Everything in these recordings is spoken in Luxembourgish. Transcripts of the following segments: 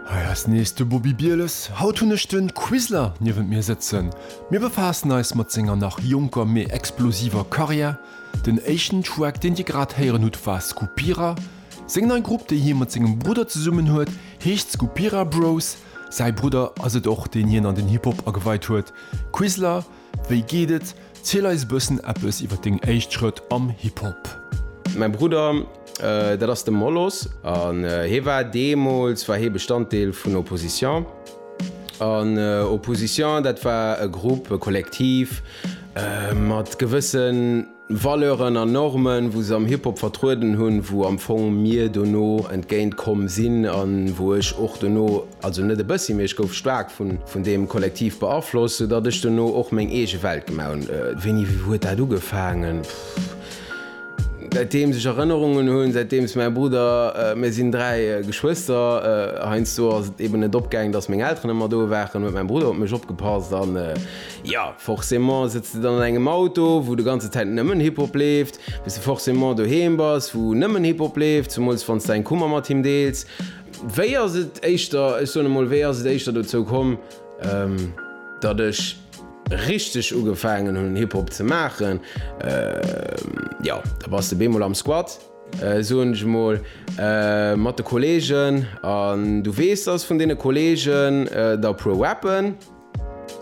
Hei ass nees de Bobi Bieles. Haut hunn ech de Quisler niewent mir sëtzen. Mir befaassen eis mat senger nach jonker mee explosiver Karriär. Den éischten Track deen dir grad héieren hutt war Skupira. Seng nei Grupp déi hie mat sengem Brudder zesummen huet heescht Skupira Bros. Säi Brudder ass et och deen hien an den Hip Hop ageweit huet. Quisler Wéi geet et? Ziel eis bëssen eppes iwwer deng éischt Schrëtt am Hip Hop. Mäi Brudder, dat ass de Molos, an hee war, deemools war hee Bestanddeel vun Opposition, an Opposition dat war e Grupp, e Kollektiv mat gewëssen, Valeuren an Normen, wou se am Hip-Hop vertrueden hunn, wou am Fong mir dono entgéint komm sinn an wou ech och dono, also net e bëssi, mee ech gouf staark vun deem Kollektiv beaflosst, sou datt ech dono och meng eege Welt gemaach hunn. Wéini huet dat ugefaangen? Pff, säitdeems ech Erënnerungen hunn, säitdeems mäi Brudder, mir sinn dräi Geschwëster, heiansdo ass et eeben net opgaangen, datt meng Elteren ëmmer do waren, huet mäi Brudder op mech opgepasst an, Jo, forcément sëtz de dann an engem Auto, wou de ganze Zäit nëmmen Hip-Hop leeft, bis de forcément doheem bass, wou nëmmen Hip-Hop leeft, zemools wann s däin Kummer mat him deels. Wéi ass et éischter, ech soen emol, wéi ass et éischter dozou komm, datt ech richteg ugefaangen hunn Hip-Hop ze maachen? Jo, da bass de bemol am Squat, soen ech emol, mat de Kollegen, an du weess, datt vun deene Kollegen der e puer rappen.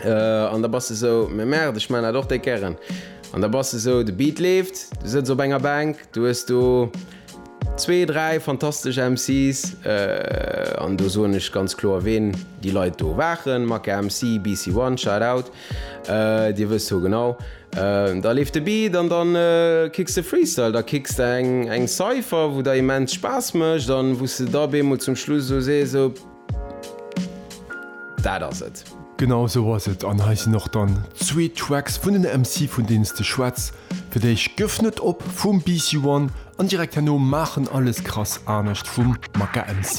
An da bass de esou, mais merde, ech maachen dat och déck gären. An da bass de esou, de Beat leeft, du sëtz op enger Bänk, du hues do zwee, dräi fantastesch MC's, an do soen ech ganz kloer ween déi Leit do waren, Macca MC, BC One, shout out, Dir wësst ho genau. Da leeft de Beat an da kicks de Freestyle, da kicks de eng Cypher, wou der immens Spaass mécht an wou s de da beemol zum Schluss esou sees, esou. Dat ass et. Genau esou ass et an hei sinn och dann zwee Tracks vun den MC vun deenen s de schwätz fir d'éischt Gëff net op vum BC One an direkt herno Maachen alles krass anescht vum Maka MC.